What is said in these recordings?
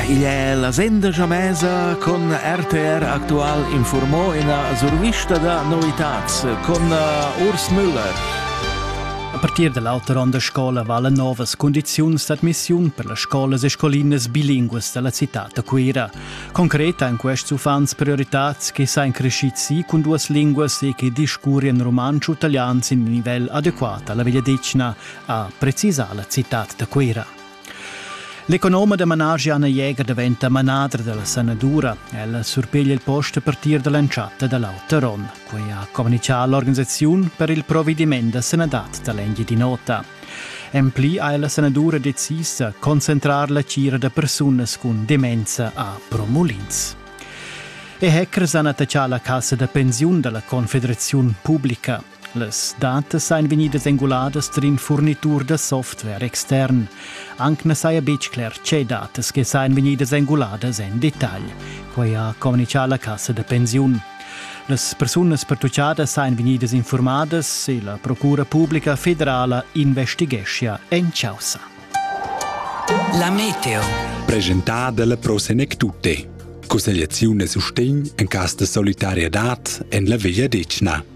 Il è la senda jamesa con RTR Aktual informò ina survista da novitads con Urs Müller. A partir da l'auter onn da scola vala novas condiziuns d'admissiun per las scolas e scolinas bilinguas da la citad da Cuira. Concreta èn quests uffants prioritads che sain crescids si cun duas linguas e che discurrian rumantsch u italian sin nivel adeguat alla vegliadetgna, ha precisà la citad da Cuira. L'economa da managi Anna Jäger daventa manadra dalla sanadura. Ella surpeglia il post a partir dall'entschatta dall'auter onn. Quei ha communicato l'organisaziun per il provvediment da sanadad dall'Engiadin'Ota. En pli ha la sanadura decis da concentrar la tgira da persunas cun demenza a Promulins. E hackers han attaccà la cassa da pensiun dalla Confederaziun Publica. Las datas ein vegnidas enguladas tar in furnitur da software extern. Anc na saja betg cler tge datas che sajan vegnidas enguladas en detagl. Quai ha communitgà la cassa da pensiun. Las persunas pertuccadas sajan vegnidas informadas e la Procura pubblica federala investigeschia en chaussa. La meteo. Presentada dalla Pro Senec Tutte. Cussegliaziun e sustegn en cas de solidarietad en la Veglia Decna.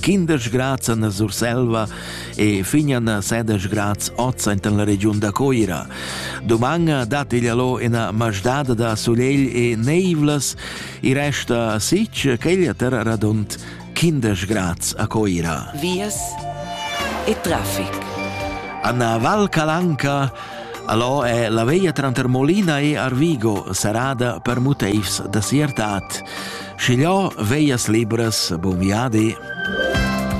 quindesch grads en la Surselva e fignan a sedesch grads oz enten la regiun da Coira. Doman dat igl allo ina masdada da solegl e neivlas, i resta sich ch'egl terra radund 15 grads a Coira. Vias e traffic. Anna Val Calanca Allò è la veglia tranter Molina e Arvigo, serrada per motivs da siertat. Schigliò veglias libras, bun viadi!